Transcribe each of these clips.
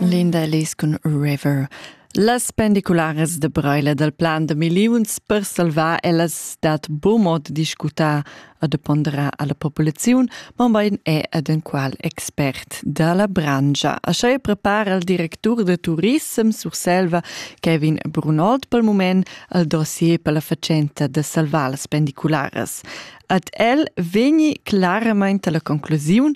Linda Ellis cun River. Las pendicularas de Breila dal plan de milliuns per salvar ellas dat bo mod discutar e de ponderar alla populaziun, ma bein è ad un qual expert dalla brangia. Așa prepara il directur de Turism Surselva, Kevin Brunold, pel moment al dossier per la facenta de salvar las pendicularas. Ad el vegni claramente la conclusiun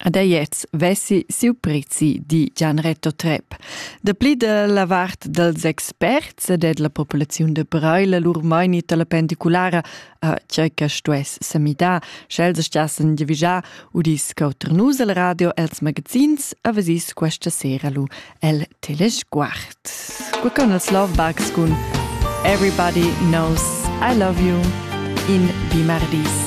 Ad Ajez vessi siu prezi, di Gianretto Trepp. Dapli dalla vart dels experts e della populaziun de Breila lur mainit alla pendiculara a tgei che stuess semidar, sch'els stassen giavigiar udis cauter nus el radio els magazins, avesis questa sera lu el telesguard. Qua con els Love Bugs cun Everybody Knows I Love You in Bimardis.